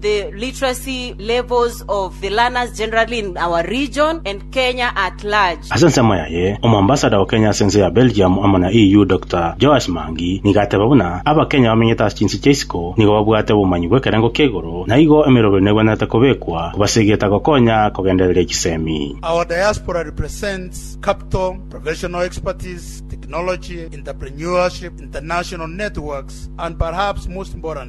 The literacy levels of the learners generally in our region and Kenya at large. Ase ensemo yaye, Omoambassador o Kenya ase ense ya Belgium amo na EU Doctor Joash Mangi nigo ateba buna Abakenya bamenyete ase chinse chia isiko nigo babwate obomanyi bw'ekerengo kia igoro na igo emeroberi negwenerete kobekwa kobasegeta gokonya kogendereria chisemi. Our diaspora represents capital, professional expertise, technology, entrepreneurship, international networks, and perhaps most importantly,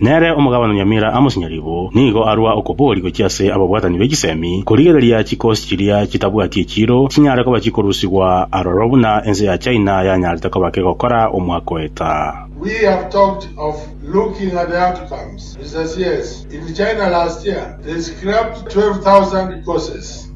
Nere omogabana nyamera amo chinyaribo nigo arua okobori gochia ase ababwatani be chisemi, korigereria chikosi chiria chitabwati echiiro chinyare koba chikorusigwa aroro buna ense ya China yanyarete koba kegokora omwaka oeta.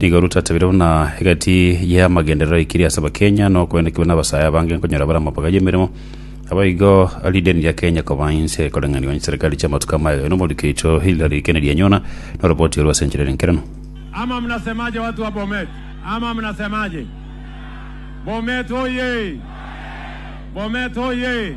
Nigo Ruto atebeire buna egati y'amagenderero aikire ase Abakenya na okoendekigwa n'abasae abange nkonyora bare amabaga y'emeremo. Naboigo ridini ria Kenya koba inse ekoreng'anigwa n'echiserikari chi'amatuko amaye aye n'omorwoti Kericho Hillary Kenedianyona na oroboti orwe ase enchera ere enkeranu. Ama mnasemaje watu wa Bomet ama mnasemaje Bomet hoye Bomet hoye.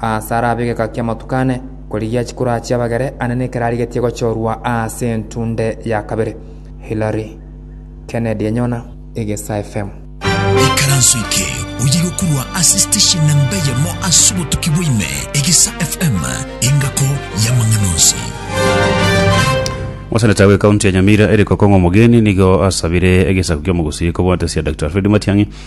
Aase arabe egeka ki'amatuko ane, korigia chikuro achie abagere ane nekero arigetie gochorwa aase entunde ya kabere. Hillary Kennedy enyona egesa FM. Ikaranso eke oyire okorwa ase station namba eyemo ase obotuki bwa ime, Egesa FM, engako y'amang'ana onsi. Moseneta we county ya Nyamira Eric Okong'o Omogeni nigo asabire egesaku ki'omogusi kobwate sia Dr. Alfred Matiang'i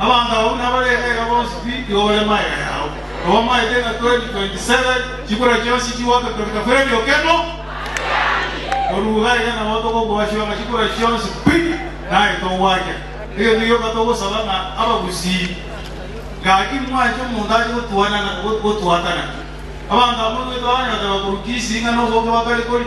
Abanto abwo nabare egaiga bonsi pi igo bare magega yao. Obamaete ng'a 2027 chikura chionsi chigoaka korenta kore ebiokemo korwa iga iga nabo tokokwasiwa ng'a chikura chionsi pi naye togoakia. Egento gioka togosaba ng'a abagusii gaki mwanche omonto ache gotwanana gotwatana. Abanto abwo nigwetwa baganyora tebakorokia ising'ana oboke bakare kori.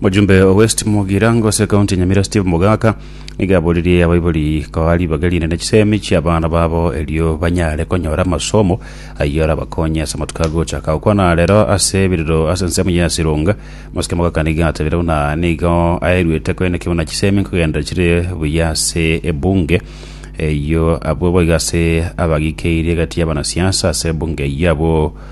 Mojumbe o West Mugirango ase ekaunti ya Nyamira Steve Mogaka nigo aboririe abaibori koa ribaga rinene chisemi chia abana babo erio banyare konyora amasomo ayio arabakonye ase amatuko agochaka okwana arero ase ebiriro ase ensemo ya Sironga Mosike Mogaka nigo atabire buna nigo aeruete koenekio buna chisemi nkogenda chire buya ase ebunge eyio abwo boigo ase abagikeirie egati y'abanasiasa ase ebunge eyio abwo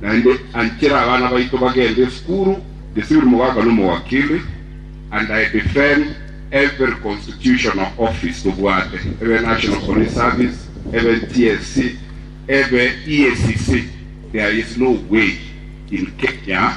Naende anchera abana baito bagende esukuru, gesiiri mogaka nomowakili, and I defend every constitutional office tobwate, ebe National Police Service, ebe NTSC, ebe EACC, there is no way in Kenya,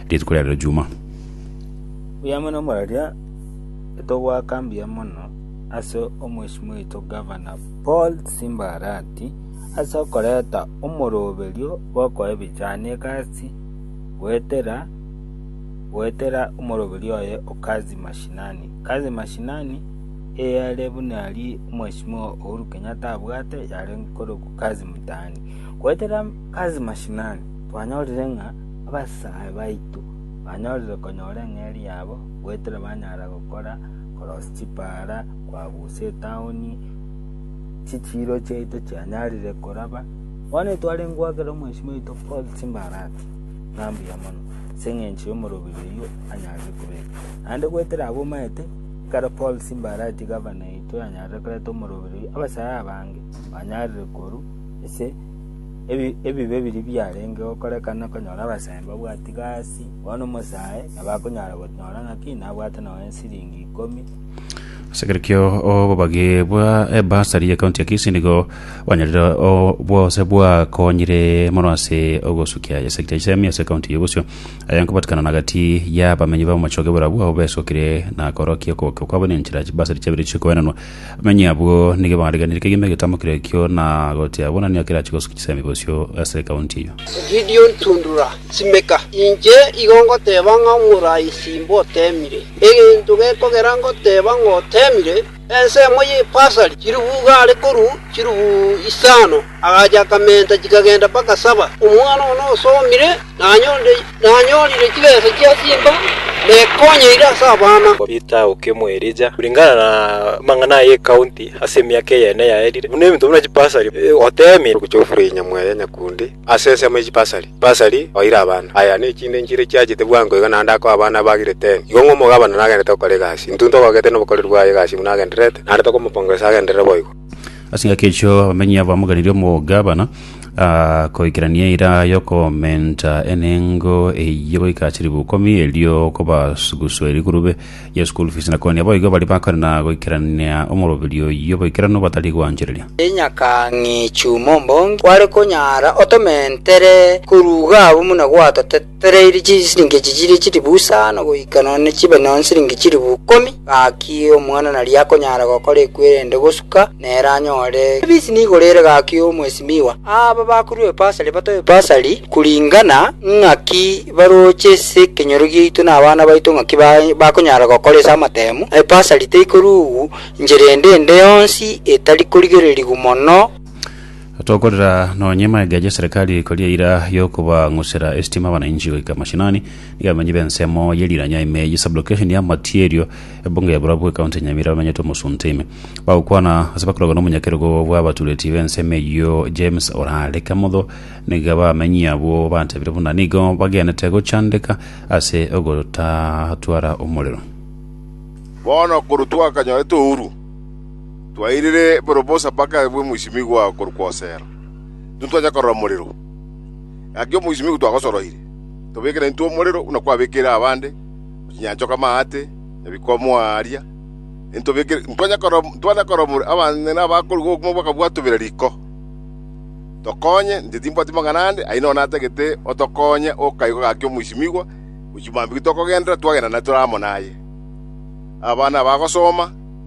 Rituko ria Rejuma. Mbuya mono mwaria, nitogoaka mbuya mono ase omweshimiwa oito Gavana Paul Simba Arati ase okoreta omoroberio bw'okoa ebichani egasi goetera goetera omoroberio oye o Kazi Mashinani. Kazi Mashinani eyare buna aria omweshimiwa Uhuru Kenyatta abwate yare nkorokwa Kazi Mtaani. Goetera Kazi Mashinani twanyorire ng'a Abasae baito banyorire konyora eng'eria yabo goetera banyara gokora korosi chipara kwagusa etaoni chichiiro chiaito chianyarire koraba. Bono etware ngoakera omwesimi oito Paul chimbara ati, Ng'a mbuya mono, ase engencho y'omorobiri oyio anyarire kobeka. Naende goetera abomaete, ekero Paul chimbara ati gavana yaito yanyarire koreta omorobiri oyio, abasae abange banyarire korwa ase Ebibe biria biarenge gokorekana konyora abasani babwati gasi, bono omosae nabo akonyara gonyora ng'aki nabwate nonya esiringi ikomi. Ase ekero kia obobagie bwa ebasari ya kaunti ya Kisii nigo bwanyarire o- bwose bwakonyire mono ase ogosukia esekta ya isemi ase kaunti ya Bosio aya nkobatikana na gati y'abamenyi b'amachoge barabwo abwo besokire na korokia okogokia kwabo na enchera chibasari chiabire chikoenanwa Manyia abwo nigo barigeneretie kegima egetambo keria ekio na goteeba, Buna nigo kerache gosukia chisemi bosio ase ekaunti eyio. Gideon Tundura, Simeka, inche igo ngoteeba ng'a omorai simboteemire. Egento gekogera ngoteeba ng'oteemire, ensemo y'epasari chilifu igare korwa chilifu isano. Agacha akamenta chikagenda mpaka saba. Omwana ogo nosomire, na nanyorire chibesa chia simba, na ekonyeire ase abana. Peter okemwa Elija, kuringana namang'ana aya ekaunti ase emiaka eyene yaerire, buna ebinto buna chipasari, oteemire. Ogocha ofura enyamwa eye nyakundi ase ensemo ye chipasari, chipasari oire abana. Aya nechinde nchire chiachete bwango iga, naende akoe abana abagire teni. Igo ng'o omogabana nagenderete gokora egasi? Intwe ntogogete nobokoreri bwaye egasi buna agendererete, naende tokomopongeresa agenderere boigo. Ase engaki echo abamenyi abo bamoganerie omogabana ah, koikerania eira y'okomenta enengo eyio goika chilifu ikomi, erio kobasuguswa erigurube ye school fees, na kooni aboigo baria bakorana goikerania omoroberi oyio boikeranu batari gwanchereria. Enyakang'e chum'ombongi kware konyara otomentere koruga abwo buna gwatotete. Toreiri chisiringi echi chire chilifu isano goika nonye chibe nonya nsiringi chilifu ikomi, gaki omwana naria akonyara gokora ekwerende gosuka nere anyore ebisi nigo rere gaki omwesimigwa. Aba bakorua ebasari batoe ebasari kuringana ng'aki baroche ase ekenyoro giaito na abana baito ng'aki ba- bakonyara gokora ase amatemu. Ebasari teikorugwa inchera ende ende yonsi etari korigererigwa mono. Tokorera nonya emegega ya chiserikali koria eira y'okobang'usera esitima abanainchi goika mashinani, nigo abamenyi b'ensemo ye Riranya ime ye Sublocation ya Matierio, ebunge ya Burabwo ekaunti ya Nyamira bamenyete omosunte ime. Bagokwana ase bakorogwa nomonyakerogo bw'abatureti b'ensemo eyio James Orare Kamotho nigo abamenyi abwo batebire buna nigo bagenete gochandeka ase ogotatwara omorero. Bono korwa twakanyorete ouru. “Twairire borobosa mpaka aye bw'omoisimigwa korokwa Hosea, intwe twancha korora omorero. Gaki omoisimigwa twagosoroire, tobekere intwe omorero buna kwabekeire abande, na chinyanchoka amaate, na bikomo aaria, intwancha korora omorero abanyene abakorigwa obokima bakabwatobera riko. Tokonye, inche timbwati mang'ana ande, aye nonya natagete otokonye okaigwa gaki omoisimigwa, gochia mambia tokogenderera, twagenda naye tore amo naye. Abana abagosoma.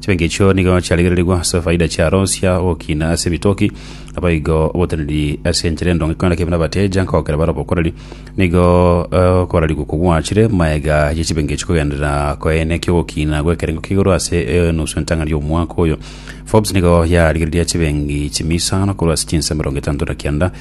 Chibenki echio nigo chiarigererigwe ase faida chiaro chia ogokina ase ebitoki, naboigo oboteneneri ase enchera endonge ekonyora kebe nabateja nkogokera bare obokoreri. Nigo eh, okorarigwa okwo gwachire maega ye chibenki echio kogenderera koeena ekia ogokina gw'ekerengo kia igoro ase enusu entang'ani y'omwaka oyo. Forbes nigo yarigereria chibenki chimia isano korwa ase chinsa emerongo etanto na kianda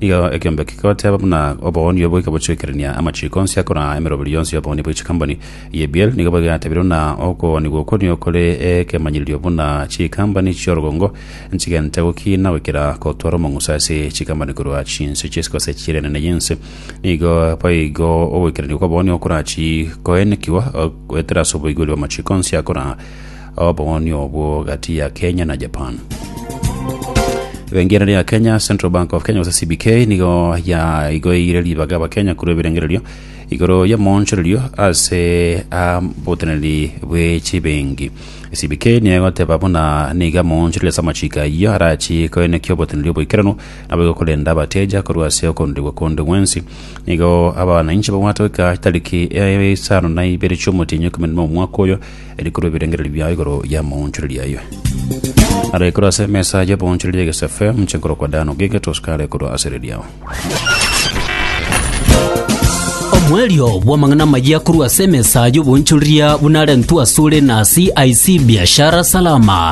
Nigo ekeombe kegoteba buna oboonio boika bochwekerania amachiiko onsi akoraa emeroberi yonsi y'oboonio bwa chikamboni. Yebiel nigo bwegatebire buna okoonigwa okwo nigo kore ekemanyererio buna chikambani chi'orogongo nchigente gokiina goikera gotwara omong'uso ase chikambani korwa chinse chi'ense gose chire enene y'ense. Nigo boigo ogoikerania kw'oboonio gokorachii koenekigwa goetera ase oboigweri bw'amachiiko onsi akoraa Obong'oni obwo gati ya Kenya na Japan. Ebengereri ya Kenya, Central Bank of Kenya gose CBK, nigo yaigoeire ribaga abakenya korwa ebirengererio igoro y'omoonchorerio ase aboteneneri bwe chibengi. CBK nigo egoteba buna nigo amoonchoreria ase amachiko ayio arachie koenekia oboteneneri oboikeranu nabo igokorenda abateja korwa ase okorudirigwa konde gwensi. Nigo abanainche babwate goika chitariki isano na ibere chi'omotienyi ekemerero na omwaka oyo rikorwa ebirengererio biao igoro y'amaonchoreria ayio. Arekorwa ase emesa y'oboonchoreria egesafe, mochie korokwa Dan ogiegete, Oscar arekorwa ase riri yao. Omoerio bw'amang'ana amayia korwa ase emesa y'oboonchoreria buna arentwe asore na CIC Biashara Salama.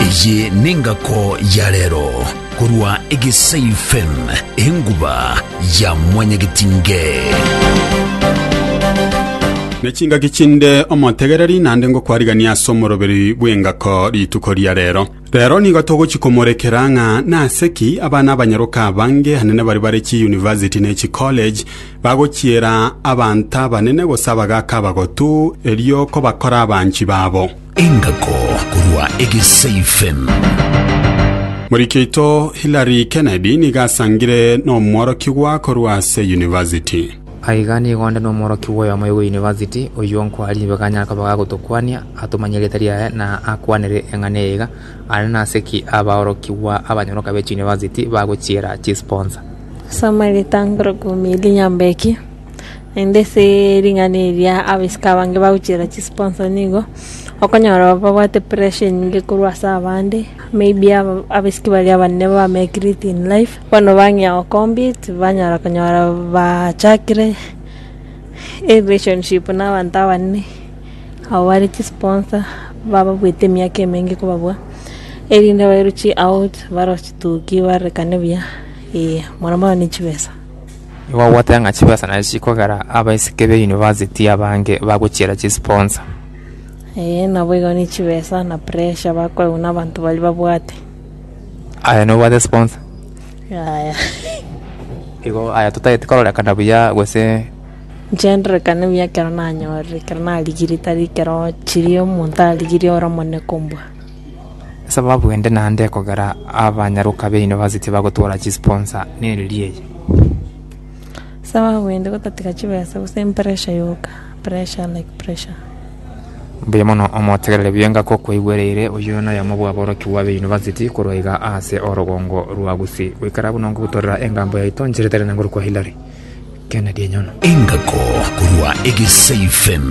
Eye nengako ya rero korwa Egesai FM, enguba ya mwanyagetinge. Nechingaki chinde omotegereri naende ngokwarigania ase omoroberi bw'engako rituko ria rero. Rero nigo togochikomorekera ng'a nase ki abana abanyaroka abange anene baria bare chiuniversity ne chicollege bagochiera abanto abanene gose abagaaka abagotu erio kobakora abanchi babo. Engako korwa Egeseifen. Moriki oito Hillary Kennedy nigo asangire nomworokigwa korwa ase university. Aiga nigo onde nomworokigwa oyomo igwe university, oyio nkwari nigo anyare koba gagotokwania, atomanye erieta riaye, na akwanere eng'ana eye iga, Aria nase ki abaorokigwa abanyoroka be chiuniversity bagochiera chisponsa? Soma egetangero Kuumiilia Nyambeki. Naende ase ring'ana eria abasika abange bagochiera chisponsa nigo okonyora babwate pressure enyinge korwa ase abande, maybe aba- abasiki baria abanene ba make it in life, bono bang'ea go compete tibanyara konyora bachakire erelationship na abanto abanene abo bare chisponsa bababuete emiaka emenge kobabua, erinde bairuchie out barochie toki barekane buya, eh, mono mono ne chibesa. Nigo ogoteba ng'a chibesa nachi chikogera abaiseke be university abange bagochiera chisponsa. Ee, naboigo ne chibesa na pressure bakoegwa na abanto baria babwate. Aye nobwate sponsa? Yaya. Igo aya totagete kororekana buya gose Inche ndorekane buya ekero nanyorire, ekero narigire tari ekero chiria omonto arigirie ore omonene kombua. Esababu ende naende ekogera abanyaroka baino base tibagotwora chisponsa neriria eye. Esababu ende gotatiga chibesa gose empressure yoka, pressure like pressure. Mbuya mono omotegerere buya ngaka okwaigwereire oyio noyomo bw'aborokigwa baino baseti korwa iga aase orogongo rwa Gusii goikera buna ongogutorera engambo yaito nchiretere na ngoru kwa Hillary. Kena ri'enyono. Engako korwa egeseifen.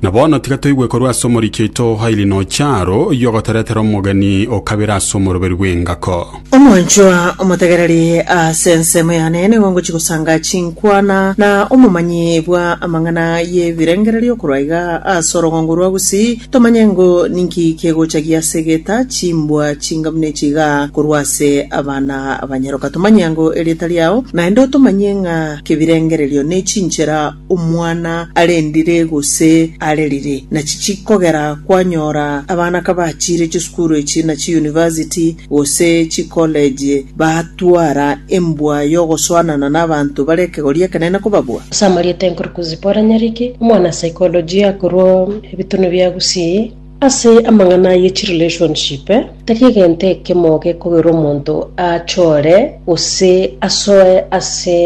Na bono tiga toigwe korwa ase omoriki oito Haili Nocharo, oyio ogoteretera omogeni o kabere ase omoroberi bw'engako. Omonchwa omotegereri ase ensemo yane nigo ngochia gosanga chinkwana na omomanyi bwa amang'ana y'ebirengererio okorwa iga ase orogongo rwa Gusii, tomanye ngo ninki kegochagia ase egeta chimbwa chingamu nechiga korwa ase abana Abanyaroka tomanye ango erieta riao, naende otomanyie ng'a kebirengererio ne chinchera omwana arendire gose arerire. Nachi chikogera kwanyora abana kabachire chisukuru echi na chiyunivasiti gose chikoleji batwara embwa y'ogosoanana n'abanto bare ekegori ekenene kobabua. Ase amarieta Enkurukuzi Paul Nyariki, omwana saikolojia korwa Ebitunu bia Gusii. Ase amang'ana ye chi relationship, tari egento ekemo gekogera omonto achore gose asoe ase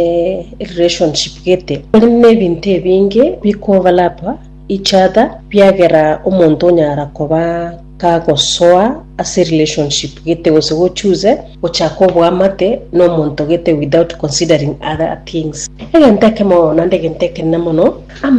relationship gete. Kore nebinto ebinge bikovalapa each other biagera omonto onyara koba kagosoa ase relationship gete gose go choose gochaka oboamate nomonto gete without considering other things. Egento ekemo naende egento ekenene mono, amang'ana.